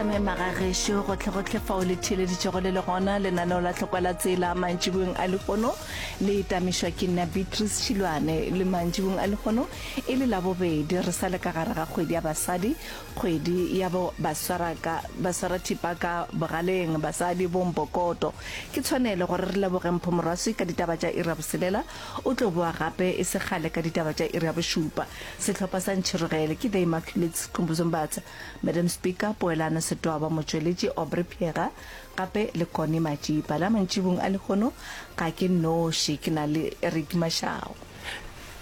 ka memaga gešo gotlhegotlhe fao le theeleditšego le le gona lenaneo la tlhokwa la tsela mantšibong a lekgono le etamišwa ke nna beatrice tšhilwane le mantšibong a lekgono e le labobedi re sa le ka gare ga kgwedi ya basadi kgwedi ya bo baswarathipa ka bogaleng basadi bompokoto ke tshwanelo gore re leboge mpho moraswi ka ditaba tša ira boselela O tlo boa gape e se kgale ka ditaba tša iri ya bošupa. Sehlopha sa Ntšhirogele ke The Immaculates, Skhumbuzo Mbatha, Madam Speaker, Poelano Setoaba, motšweletši Aubrey Phiega, gape le Connie Matšipa. La mantšibung a lehono ga ke nnoši, ke na le Eric Mashau.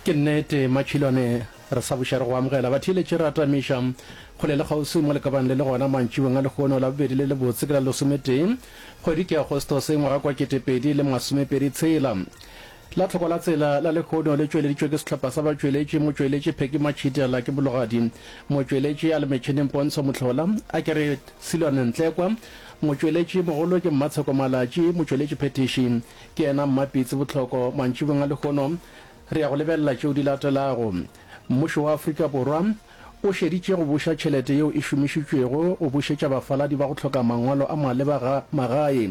Ke nnete Matšhilwane, re sa buša re go amogela. Batheeletši re atamiša kgole le kgauswi mo le ka bang le le gona mantšibong a lehono. Labobedi le lebotse ke la lesometee kgwedi ke Agostose ngwaga kwa ketepedi le masomepedi tshela. La tlhoko la tsela la lehono le tšweleditšwe ke sehlopha sa batšweletši motšweletši Pheki Matšhitiala ke bologadi motšweletši a le metšhineng Pontsho Motlhola a ke re Silwane Ntlekwa motšweletši mogolo ke Mmatsheko Malatši motšweletši phethiši ke yena Mmapitsi Botlhoko mantšibong a lehono re ya go lebelela tšeo di latelago Mmušo wa Afrika Borwa o šeditše go buša tšhelete yeo e šomišitšwego go bušetša bafaladi ba go hloka mangwalo a maleba ga magae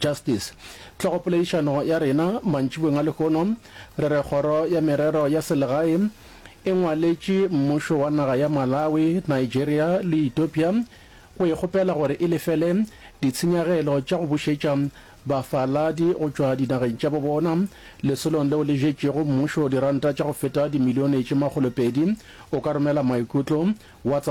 Justice. Tlhogopoledišano ya rena mantšibeng a lehono re re Kgoro ya Merero ya Selegae e ngwaletše mmušo wa naga ya Malawi, Nigeria le Ethiopia go e kgopela gore e lefele ditshenyagelo tša go bušetša bafaladi go tšwa dinageng tša bo bona lesolong leo le jetšego mmušo diranta tša go feta dimilione tše makgolopedi. O ka romela maikutlo WhatsApp.